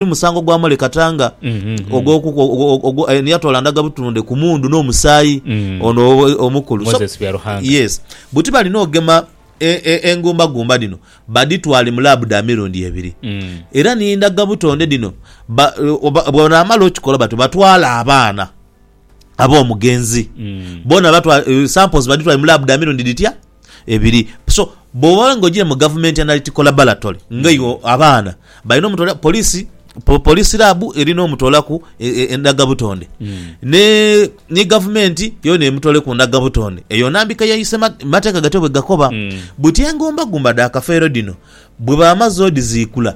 musango gwamale kata nga yatoola ndhaga butunde ku mundu n'omusaayi ono omukulu. Buti balina ogema engumbagumba dhino badhitwale mu laabu dha mirundi ebiri era ni ndhaga butonde dhino bwebanaamala okikola batyo batwale abaana ab'omugenzi boona samples badhitwale mu laabu dha mirundi dhitya? Ebiri so bwoba nga ojire mu gavumenti analytical laboratory nga iwe abaana balina omutwala polisi polisi lab erina omutolaku endaga butonde ne ni gavumenti yona emutole ku ndaga butonde eyo nambika yaise mateka gatyo bwegakoba buti engomba gumba dha kafeero dhino bwebamaze odizikula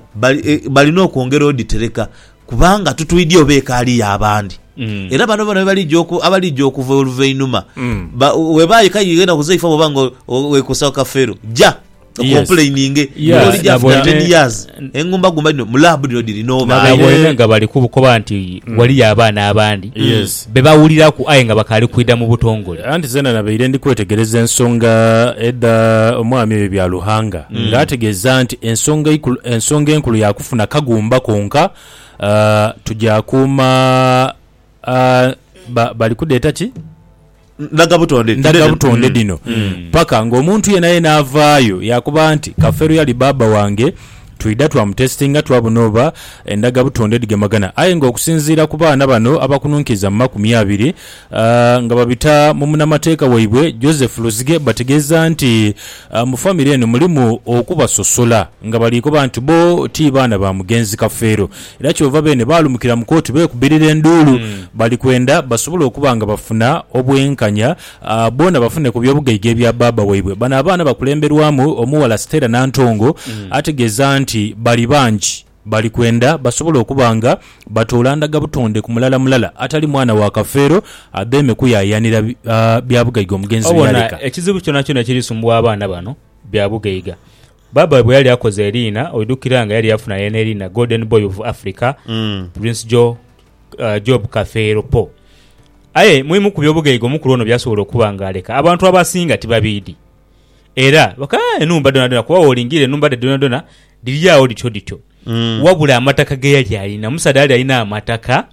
balina okwongera oditereka Kubanga tutwidhi oba ekaali y'abandi. Era bano bona abalija okuva oluvainuma, weba aye k'aidha enaku zaifo bw'oba nga wekosa akafeero, ja okompuleininge n'olija after ten years. Engumbagumba dhino mu laabu dhino dhiri n'obaale. Naboine nga bali kubukoba nti waliyo abaana abandi. be bawuliraku aye nga bakaali kwidha mu butongole. Anti zeena nabaire ndi kwetegereza ensonga edha Omwaami oyo ebya Luhanga, nga ategeeza nti ensonga eikulu, ensonga enkulu ya kufuna kagumba konka, tuja kuuma, ba, bali kudheeta ki? Ndhagabutonde, ndhagabutonde dhino, paka ng'omuntu yeenayeena avaayo yaakoba nti, Kafeero y'Ali Bbaabba wange, Twidha twamutesitinga twabona oba endhaga butonde dhigemagana aye nga okusinziira ku baana bano abakununkiiza mu makumi abiri nga babita mu munamateeka waibwe Joseph Luzige bategeeza nti mu famire eno mulimu okubasosola nga baliikoba nti bo ti baana ba mugenzi Kafeero era kyova beene baalumukira mu kooti beekubirira enduulu bali kwenda basobole okuba nga bafuna obwenkanya Boona bafune ku by'obugaiga ebya bbaabba waibwe. Bano abaana bakulemberwamu omughala Stella Nantongo ategeeza nti bali bangi bali kwenda basobole okuba nga batoola ndhaga butonde ku mulala mulala atali mwana wa Kafeero adheeme kuyaayaanira bya bugaiga omugenzi bye Obona yaleka. ekizibu kyonakyona ekiri sumbuwa abaana bano bya bugaiga. Bbaabba waibwe yali akoze eriina, oidhukira nga yali yafuna yeene eriina Golden Boy of Africa, Prince Joe, Job Kafeero po. Aye mu bimu ku by'obugaiga omukulu ono by'asobola okuba ng'aleka, abantu abasinga tibabiidhi. Era bakaagha enhumba dhoonadhoona kuba bw'olingiirira enhumba dhe dhoonadhoona dhiri agho dhityo dhityo. Wabula amataka ge yali alina, omusaadha yali alina amataka.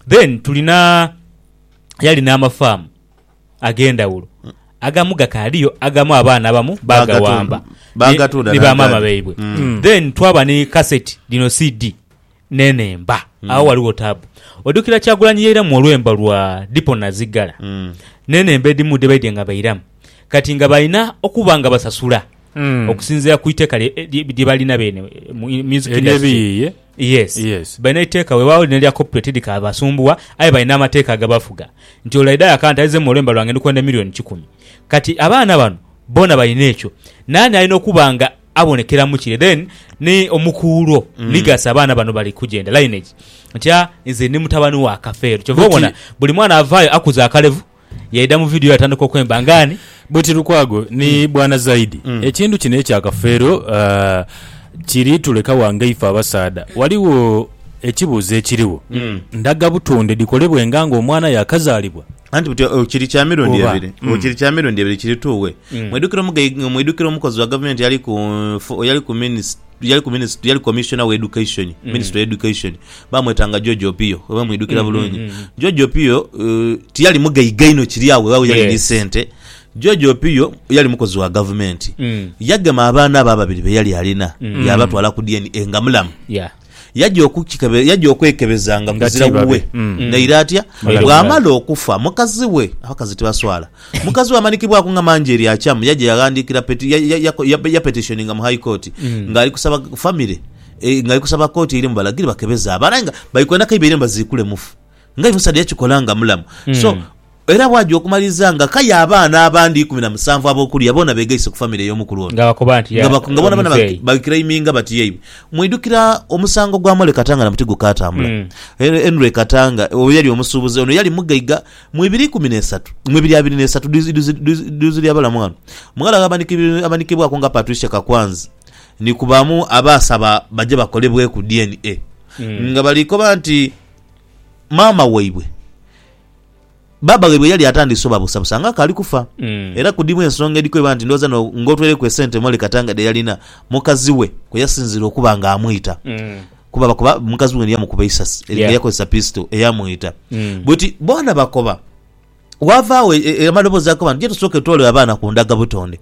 Then tulina yali n'amafaamu ag'endhawulo. Agamu gakaaliyo, agamu abaana abamu baagawamba ni ba maama baibwe. Then twaba ni kaseti dhino CD n'enhemba. Agho ghaligho taabu. Odukira Kyagulanyi yairamu olwembo lwa Dipo Nazigala n'enhemba edhimu dhebaidye nga bairamu kati nga balina okuba nga basasula okusinziira ku iteeka lye balina beene mu music industry. Yes. Yes. Balina eiteeka weewaawo lino erya copyright tidhikabasumbuwa aye balina amateeka agabafuga nti ole aidha yaka nti aizemu olwemba lwange ndi kwenda million kikumi. Kati abaana bano boona balina ekyo. Naani alina okuba nga. abonekeramu kire then ni omukuulwo legacy abaana bano bali kugenda lineage ntya nze ndi mutabani wa kafeero kyova Buti- obona buli mwana avaayo akuza akalevu yaida mu video yatandika okwemba nga ani Bwiti Lukwago ni bwana Zaidi, ekintu kino ekya Kafeero ah, kiri tuleka wa nga ife abasaadha. Waliwo ekibuuzo ekiriwo, ndagabutonde dhikolebwenga nga omwana yakazaalibwa? Anti buti o- kiri kya mirundi Kuba, ebiri o, mm. kiri kya mirundi ebiri kiri tuwe Mm. mwidukire omugai- mwidukire omukozi wa gavumenti yali ku fo- yali ku minis- yali ku minis- yali commissioner wa education Mm. minister wa education bamwetanga george opio oba mwidukira Mm, bulungi mm, mm. george opio eh, tiyali mugaiga inho kiri awo webaawo yali ni Yes. sente george opio yali mukozi wa gavumenti Mm. yagema abaana abo ababiri beyali alina Mm. yabatwala ku dna nga mulamu Yeah. Yaja okukikebe, yaja okwekebeza nga Nga kuzira ti babe. wuwe. Mm. Naire atya? Naire Bw'amala omulalu. okufa, mukazi we, abakazi tibaswala, mukazi we amanikibwaku nga mangi eri akyamu, yaja yaghandiikira peti, ya, ya, ya, ya, yapetitioninga mu High Court nga ali kusaba famire, eh, nga ali kusaba kooti eire mu balagire bakebeze abaana aye nga bali kwenda kaiba eire mbaziikule mufu. Nga aye omusaadha yakikola nga mulamu. So, era bwagya okumaliriza nga akaye abaana abandi ikumi na musanvu ab'okulya bona begaise ku famire ey'omukulu ono. Nga bakoba nti ya Nga bona bona omuzeeyi. bagiclaiminga bati yaibwe. Mwidhukira omusango gwa Mole Katanga na muti gukaatambula? Mm. Hen- Henry Katanga oyo yali omusuubuzi, ono yali mugaiga mu ibiri ikumi n'esatu, mu ibiri abiri n'esatu duz- duz- duz- duz lya balamu ghano. Mughala gha abanikibwi- abanikibwaku nga Patricia Kakwanzi ni ku bamu abaasaba baje bakolebweku DNA. Mm. Nga bali koba nti maama waibwe, baaba waibwe yali atandise obabusabusa nga akaali kufa. Mm. Era ku dhimu ensonga edhi kweba nti ndhowooza no- ng'otweireku esente Molly Katanga dhe yalina, mukazi we kwe yasinziira okuba ng'amwita. Mm. Kuba bakoba mukazi we yamukuba eisasi Yeah. nga yakozesa pisito eyamwita. Mm. Bweti boona bakoba. Waavaawo e- e- amaloboozi agakoba nti je tusooke twolere abaana ku ndagabutonde.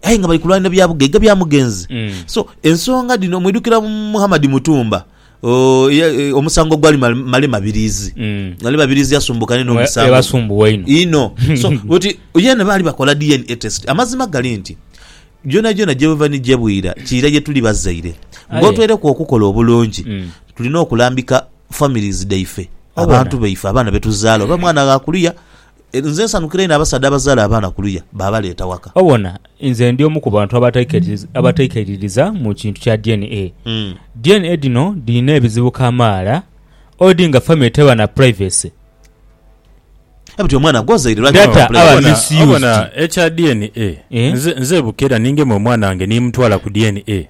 aye nga bali kulwanira bya bugaiga bya mugenzi. So, ensonga dhino mwidhukira Muhammad Mutumba oh, eya- eh, omusango ogwali ma- male Mabiriizi. Mm. Male Mabiriizi yasumbuka n'eno Mwe- omusango. ebasumbuwa inho. Inho. So, oti yeena baali bakola DNA test. Amazima gali nti gyonagyona gyebava ni gyebwira kiira gye tuli bazaire. Aye. Ng'otweireku okukola obulungi, Mm. tulina okulambika families dhaife, Obona. abantu baife, abaana be tuzaala oba mwana ghaakuliya Nze nsanukira inho abasaadha abazaala abaana kuluya baabaleeta waka. Obona, nze ndi omu ku bantu abataikaiririza mu kintu kya DNA. DNA dhino dhirina ebizibu kamaala, odi nga famire teba na privacy. Aye buti omwana gwozaire lwaki taba na privacy? Obona, ekya DNA, nze ebuka era ningema omwana wange nimutwala ku DNA,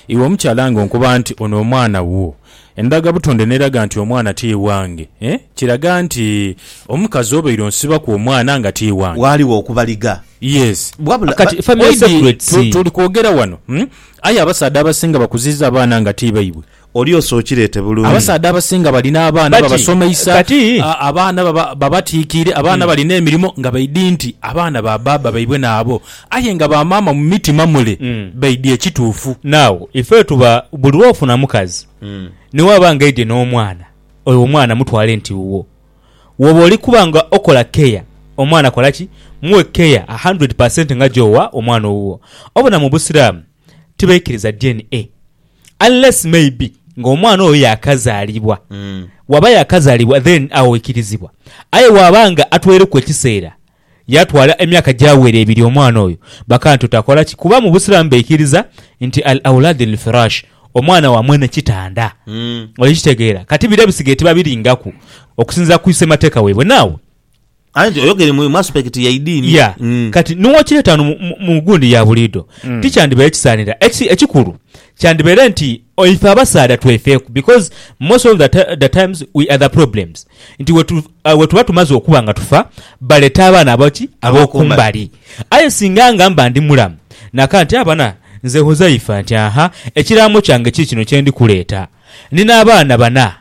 iwe omukyala ng'onkoba nti ono omwana wuwo, Endagabutonde n'eraga nti omwana ti wange, eh? Kiraga nti omukazi obaire onsibaku omwana nga ti wange. Ghaligho okubaliga. Yes. Wabula Kati ba- family oidi secrets. tu- tuli kwogera wano, hmm? Aye abasaadha abasinga bakuziiza abaana nga ti baibwe. Oli osookireete bulungi. Abasaadha abasinga balina abaana But, babasomeisa, kati- a- abaana baba- babatiikiire, abaana balina emirimo nga baidi nti abaana ba baaba baibwe naabo. Aye nga ba maama mu mitima mule baidhi ekituufu. Now ife tuba buli lwofuna mukazi ni waba nga aidye n'omwana, oyo omwana mutwale nti wuwo. Woba oli kuba nga okola care omwana kola ki? Muwe care a hundred per cent nga gyowa omwana owuwo. Obona mu Busiraamu tibaikiriza DNA unless maybe nga omwana oyo yakazaalibwa. Waba yakazaalibwa then agho oikirizibwa. Aye waba nga atweireku ekiseera Yaatwala emyaka gyawera ebiri omwana oyo bakantu takola ki kuba mu Busiraamu baikiriza nti al-awlaad al-firaash, omwana wa mwene kitanda. Oli kitegeera? Kati bire bisigaire tibabiringaku okusinziira ku semateeka waibwe. Naawe. Aye nti oyogere mu aspect ya idiini. Yeah. Kati niwokireeta wano mu gundi ya buliidho, tikyandibaire kisaanira. Eki, ekikulu kyandibaire nti Ife abasaadha twefeeku because most of the times we are the problems nti wetuba tumaze okuba nga tufa baleta abaana aboki abokumbali aye singa nga mba ndi mulamu naka nti abana nze Huzaifa nti aha ekiraamo kyange kikino kyendi kuleeta nina abaana bana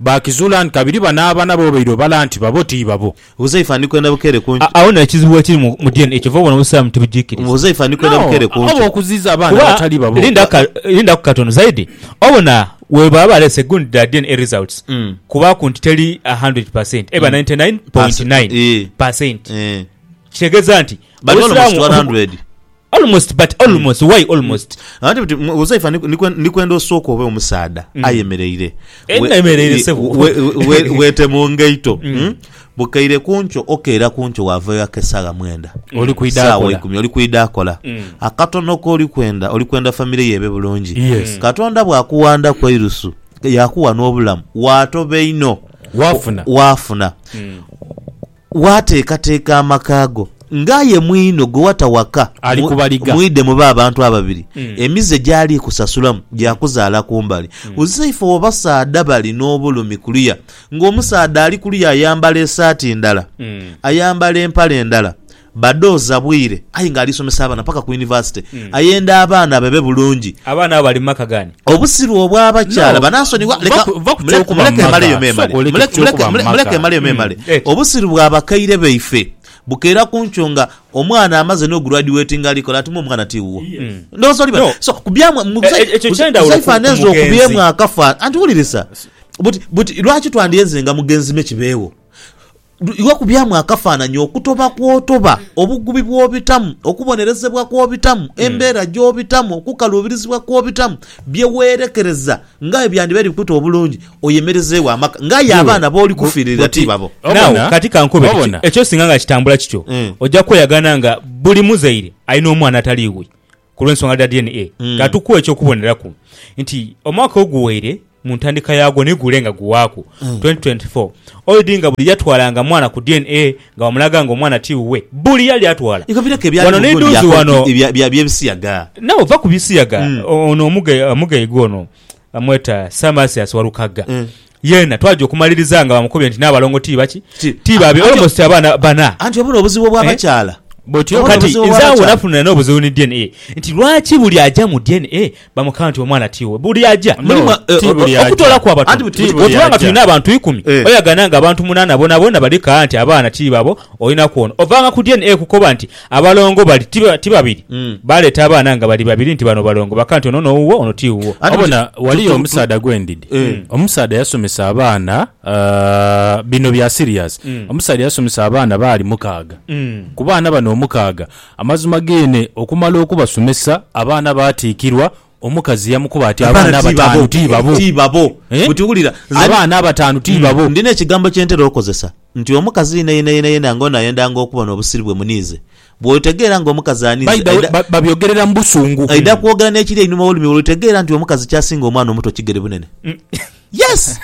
Baakizuula nti kabiri bano abaana b'obaire obala nti babo ti babo. Huzaifa, Ndi kwenda bukeere ku nkyo. Agho n'ekizibu bwekiri mu mu dna kyova obona Obusiraamu tibugikiriza. Huzaifa, Ndi kwenda bukeere ku nkyo. Ob'okuziiza abaana Kuba, abatali babo. linda ka, lindaku katono, Zaidi, obona bwebaba baleese good dha dna results, kubaaku nti teri a hundred per cent, eba ninety nine point nine per cent, kitegeeza nti Bali bano mu Obusiraamu. sitwara hundred. Almost but almost why almost. Anti buti mwe- Uzaifa ni- nikwe- nikwenda osooke obe omusaadha ayemereire Eh, We- nayemereire, i- sebo. we- we- weete mu ngaito mm? bukaire kunkyo okeera kunkyo wavayo akesagha mwenda Oli kwidha saawa akola. ikumi oli kwidha akola akatono koli kwenda oli kwenda famire yeebe bulungi Yes. katonda bwakuwanda ku eirusu yakuwa n'obulamu waatoba einho Waafuna. waafuna Waateekateeka amaka go ng'aye mwino gwe wata waka, Ali ku baliga. mwidhe mube abantu ababiri. Emize gy'ali kusasulamu gya kuzaala ku mbali. Uzaifa w'abasaadha bali n'obulumi kuluya ng'omusaadha ali kuluya ayambala esaati ndala, ayambala empale ndala, badooza bwire aye ng'ali somesa abaana paka ku yunivasite, ayenda abaana babe bulungi. Abaana abo bali mu maka ghaani? Obusiru obw'abakyala banaasonigwa? Leka, muleke emaleyo memale, muleke emaleyo memale. Obusiru bwa bakaire baife bukeera ku nkyo nga omwana amaze n'oguradiwetinga ali kola ati mwe omwana ti wuwo. Ndowooza oli bali. So, ku byamwe, Saifa anenze okubyemu akafa. Anti wulirisa, buti, buti lwaki twandyenzenga mugenzi me kibeewo? Iwe kubyamu akafaananyi okutoba kw'otoba, obugubi bw'obitamu, okubonerezebwa kw'obitamu, embeera gy'obitamu, okukaluubirizibwa kw'obitamu, bye weerekereza nga aye byandibaire bikute obulungi oyemerezeegho amaka nga aye abaana b'oli kufiiririra ti babo. Naawe kati ka nkube kiti, ekyo singa nga kitambula kityo, oja kweyagana nga buli muzaire alina omwana atali iwe. ku lw'ensonga dha DNA, ka tukuwe eky'okuboneraku nti omwaka oguwaire mu ntandika yaagwo ni gule nga guwaaku, 2024, Oid nga buli yatwalanga mwana ku DNA nga bamulaga nga omwana ti wuwe. Buli yali atwala. Igo bireku ebyali Wano mu vvu n'edhoozi wano. lya bya by'ebisiyaga. Nawe va ku bisiyaga. Ono omuga omugaige ono bamweta Sir Marcius Walukagga. Yeena twaja okumaliriza nga bamukubye nti n'abalongo ti baki? Ti, Ti babe, anti- almost abaana bana. Anti obwo n'obuzibu obw'abakyala. Bwotyo Obwo kati n'obuzibu nze awo obw'abakyala. nafunira n'obuzibu ni DNA nti lwaki buli aja mu DNA bamukaba nti omwana ti wuwe. Buli aja. No, Mulimu, eh, ti o- buli o- aja. Okutoola kwa batono. Anti buti- Ti buti- buli Bw'otuula nga aja. tulina abantu ikumi, Eh. oyagana nga abantu munaana bonabona bali kaa nti abaana ti babo, olina kwona. Ovaanga ku DNA kukoba nti Abalongo bali ti ba- ti babiri Mm. baleeta abaana nga bali babiri nti bano balongo baka nti ono nowuwo ono ti wuwo Ate wabona tu- tu- waliyo tu- omusaadha gwendidi Eh. omusaadha yasomesa abaana ah, bino bya serious Mm. omusaadha yasomesa abaana baali mukaaga Mm. ku baana bano omukaaga amazima geene okumala okubasomesa abaana baatiikirwa Omukazi yamukoba ati, Abaana abataanu ti babo? Ti babo. Eh? Buti wulira, nze Abaana abataanu ti babo? ndina ekigambo kye ntera okozesa nti omukazi yena yena yena yena nga ono ayendanga okubona obusiri bwe muniize. Bw'otegeera nga omukazi aniize, By the way, aidha, ba- babyogerera mu busungu. aidha kwogera n'ekiri einhuma w'olulimi olwo, otegeera nti omukazi ky'asinga omwana omuto kigere bunene. Yes!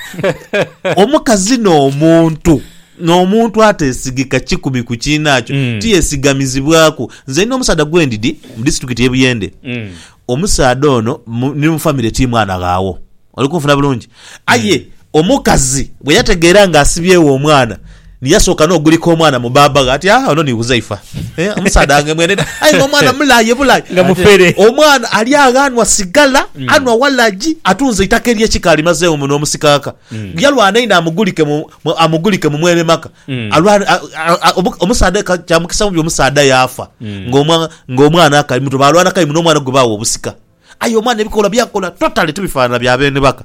Omukazi n'omuntu n'omuntu ateesigika kikumi ku kiinaakyo Mm. tiyesigamizibwaku. Nze nina omusaadha gwe ndidi mu disitulikiti y'e Buyende. Mm. Omusaadha ono mu- ni mu famire ti mwana ghawo. Oli kunfuna bulungi? Aye omukazi bwe yategeera ng'asibyegho omwana, Ni yasooka n'ogulika omwana mu baaba ghe ati, Ah, ono ni Huzaifa. Eh, omusaadha wange mweneda. Aye nga omwana mulayi ye bulayi. Nga mufere. Omwana ali agho anwa sigala, anwa walagi, atunze eitaka ery'ekika alimazeegho muno omusikaaka. Yalwana inho amugulike mu, mu, amugulike mu mwene maka. Alwane, a, a, a, omu, omusaadha aye ka, kya mukisa mubi omusaadha yaafa nga omwa, nga omwana akali muto. Baalwana kayi muno omwana gwe baagha obusika. Aye omwana ebikola by'akola totally tibifaanana bya beene baka.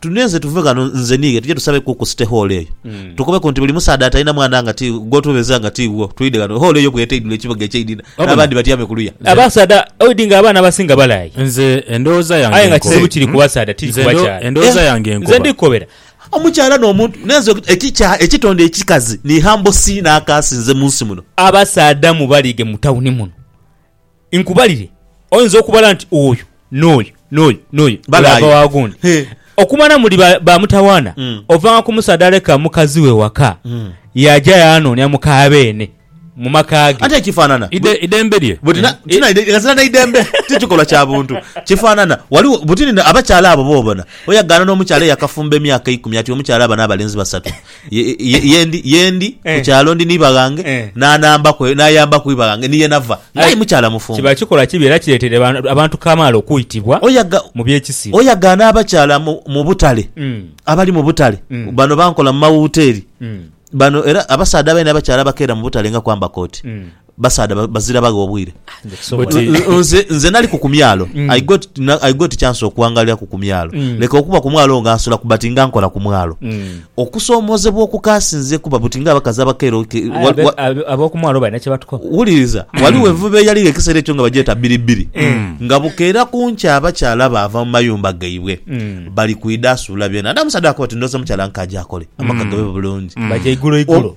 Tunenze tuve ghano nze niiwe tuje tusabe ku ku City Hall eyo. Tukobeku nti buli musaadha atalina mwana nga ti gw'otubeeza nga ti wo, twidhe ghano. Hall eyo bw'ete eidhule ekibuga eky'einhina Wabona. n'abandi batyame ku luya. Abasaadha oidhi nga abaana abasinga balaayi. Nze endowooza yange Aye nga nkobe. kizibu kiri ku basaadha tiri Nze ku ndo- bakyala. endowooza Eh, yange nkoba. Nze ndi kukobera. Omukyala n'omuntu nenze ekikya ekitonde ekikazi ni humble si n'akaasi nze mu nsi muno. Abasaadha mubalige mu tawuni muno Nkubalire, oinza okubala nti oyo, n'oyo, n'oyo, n'oyo balaaya wa gundi. Okumala muli ba mutawaana, ovanga ku musaadha aleka mukazi we waka yaaja yaanoonia muka beene mu maka ge. Anti ekifaanana idembe lye. Buti ghazira n'eidembe ti kikolwa kya buntu. Kifaanana, ghaligho buti abakyala abo b'obona. Oyagaana n'omukyala eyakafumba emyaka eikumi ati omukyala aba n'abalenzi basatu. Ye- ye- yendi yendi Eh. kukyalo ndi niba ghange Eh. nanambaku nayambaku iba ghange niye nava nga aye mukyala mufumbo Kiba kikolwa kibi era kiretere abantu- abantu kamaala okwitibwa oyaga mu by'ekisiru. oyagaana abakyala mu, mu butale Mm, abali mu butale Mm. bano bankola mu mawuteeri mm, bano era abasaadha abaine abakyala abakeera mu butale nga kwamba kooti mm. Basaadha bazira bagha obwire. Buti. Nze nze naliku ku myalo Mm. I got na- I got chance okuwangaliraku ku myalo Mm. leka okuba ku mwalo nga nsulaku but nga nkola ku mwalo Mm. okusomozebwa okukasinze kuba buti nga abakazi abakaire oke- Aye wa- abe- wa- abe- ab'okumwalo balina kye batukoba wuliriza waliwo envuba eyaligho ekiseera ekyo nga bagyeta bbiribbiri nga bukeera ku nkya abakyala baava mu mayumba gaibwe Mm. bali kwida asuula byona ate amusadha akuba ti ndoza mukyala nkaja akole amaka gabe bulungi baja igulo igulo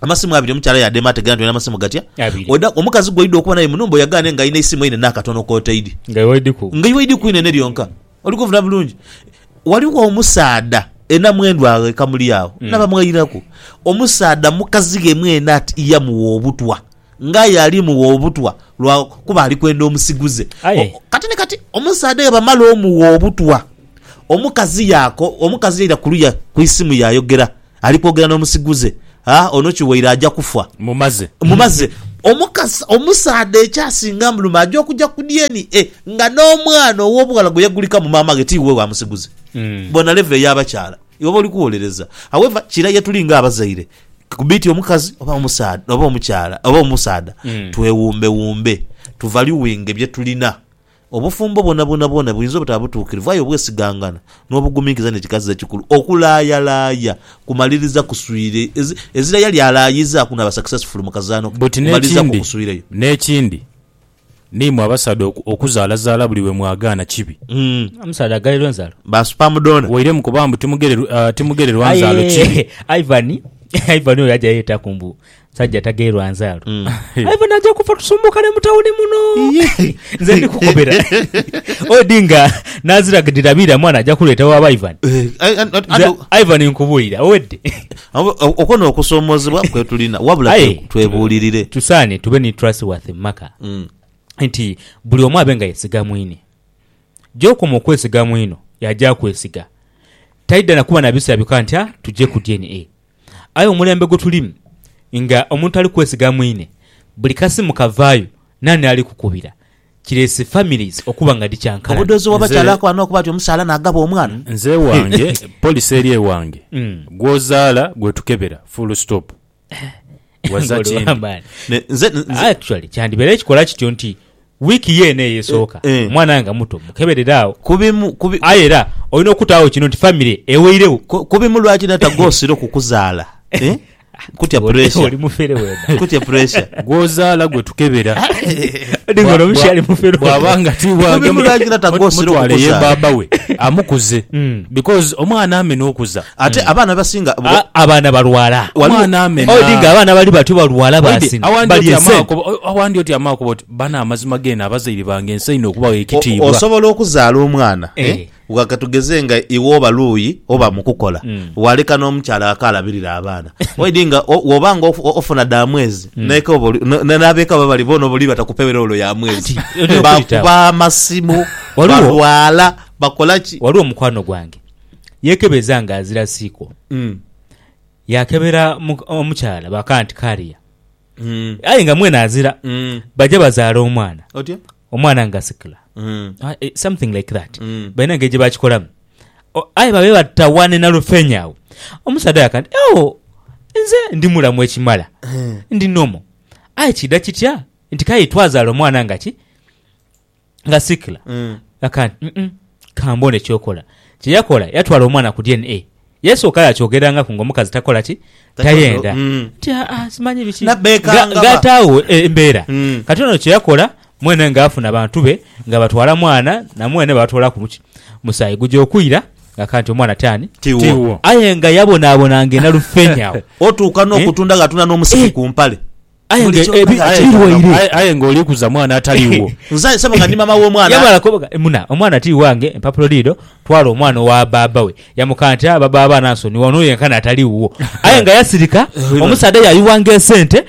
amasimu abiri omukyala yadema ategera nti olina amasimu gatya Abiri. Oda- omukazi gwoida okuba naye munumba oyagane nga alina eisimu einene akatono kotaidi Nga iwaidiku. nga iwaidi kwinene lyonka oli kuvuna bulungi waliwo omusaadha enamwendu agho ekamuli agho nabamwairaku omusaadha mukazi ghe mwene ati yamuwa obutwa Ng'aye ali mugha obutwa lwa kuba ali kwenda omusiguze. Aye. Kati ni kati omusaadha aye bwamala omugha obutwa, omukazi yaako, omukazi yaira ku luya ku isimu yaayogera ali kwogera n'omusiguze, Ha, ono kiwaire aja kufa. Mmumaze. Mmumaze. Omukazi, omusaadha ekyasinga amuluma aja okuja ku DNA nga n'omwana ow'obughala gwe yagulika mu maama ghe ti wuwe wa musiguze. Bona level y'abakyala. Iwe oba oli kuwolereza. However, kira ye tuli ng'abazaire. Kubiti omukazi oba omusaadha oba omukyala oba omusaadha mm. twewumbe wumbe tuvaluwinge byetulina obufumbo bwonabwona bwona buyinza obutaba butuukirivu aye obwesigangana n'obuguminkiza nekikaziza ekikulu okulayalaya kumaliriza kuswire ezira yali alayiza kunaba successful mukazano kumaliriza kukuswireyo n'ekindi N'imwe abasaadha oku, okuzaalazaala buli lwe mwagaana kibi. Omusaadha aghairwa enzalo. Ba sperm donor. Waire mu kuba mbu timugererw, ah, timugererwa nzaalo Aye kibi. Ivan, Ivan oyo aja yetaku mbu musajja atagheirwa nzaalo. Ivan aja kufa tusumbukane mu tawuni muno. Iyee. Nze ndi kukobera. Odinga n'azira dhirabira mwana aja kuleeta wa ba Ivan. Eh, eh, eh, Nze ado- Ivan nkubuulira owedde. Okwo n'okusoomoozebwa kwe tulina, wabula twebuulirire. Tusaane tube ni trustworthy mu maka, mm. nti buli omu abe nga yesiga mwine. Gy'okoma okwesiga mwino y'aja akwesiga, taidha na kuba na bisera byoka nti ah, tuje ku DNA. Aye omulembe gwe tulimu nga omuntu tali kwesiga mwine, buli kasimu kavaayo naani ali kukubira? kireese families okuba nga dhikyankalana. Obudozi wa bakyala ako ano okuba ati omusaala nagaba omwana. Nze ewange police eri ewange gwozaala gwetukebera full stop waza kindi. Actually kyandibeere kikola kityo nti week yeena eyo esooka omwana nga muto mukeberere agho aye era olina okutaagho kino nti family eweiregho. Kubimu lwaki nata gwosira okukuzaala. Nkutya Oli- pressure. oli mufere wena Nkutya pressure. gwozaala gwe tukebera Ninga ono omukyali mufere bwaba nga tiwange Mubimulangira tagosira mutwale ye okukuzaala. baaba we amukuze Mm. because omwana amena okuza Ate abaana abasinga A- abaana balwala Waliwo- omwana amena odinga abaana bali batyo balwala Wade, basina awandi bali oti esente amakuba- o- awandi oti amakuba oti bano amazima geno abazaire bange nsaine okubawa o- ekitiibwa osobola okuzaala omwana Eh. eh, Gha katugeze nga iwe oba luuyi oba mu kukola, waleka n'omukyala ghako alabirire abaana. Waidhi nga woba nga ofuna dha mwezi, n'ab'eka baba bali boona oba oli batakupeere wolo ya mwezi. Bakuba amasimu, balwala, bakola ki? Ghaligho mukwano gwange yeekebeza nga azira siiko. Yaakebera omukyala baakagha nti kaaria aye nga mwene azira. Baja bazaala omwana. omwana nga sikla something like that balina engeri gyebakikolamu aye babe batawane nalufenya agho omusaadha yaka nti oh nze ndi mulamu ekimala ndi nomo aye kidha kitya nti kale twazala omwana nga ki nga sikla yaka nti kamboone kyokola kyeyakola yatwala omwana ku DNA Yesu oka yaakyogerangaku ng'omukazi takola ki? Tayenda. Nti, Aa, simanyi biki. Nga, nga ataagho embeera. Kati ono kye yakola, mwene nga afuna bantu be nga batwala mwana, na mwene baatoolaku buki? Musaayi. Guja okwira nga kanti omwana ti ani? Tiwo. Aye nga yabonaabona ng'enalufenya agho. Otuuka n'okutundaghatunda n'omusipi ku mpale. Aye nga Bulikyo ebi- nga aye- birwaire. aye- aye nga oli kuza mwana atali wo Nze sebo nga ndi mama w'omwana. yamala kubaga muna omwana ti wange empapulo dhiido twala omwana owa bbaabba we yamukana ati aa baba abaana nsonyi wano yenkana atali wuwo aye nga yasirika Wino. omusaadha yayuwanga esente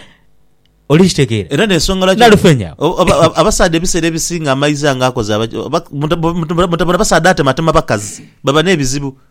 oli kitegeera Era n'ensonga lwaki- Nalufenya. O- oba- oba- abasaadha ebiseera ebisinga amaizi ange akoze aba- oba- muta- muta- mutabona abasaadha atematema bakazi baba n'ebizibu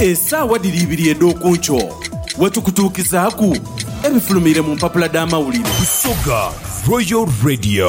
Esaawa dhiri ibiri edh'oku nkyo we tukutuukizaaku ebifulumiire mu mpapula dh'amawulire. Busoga Royal Radio.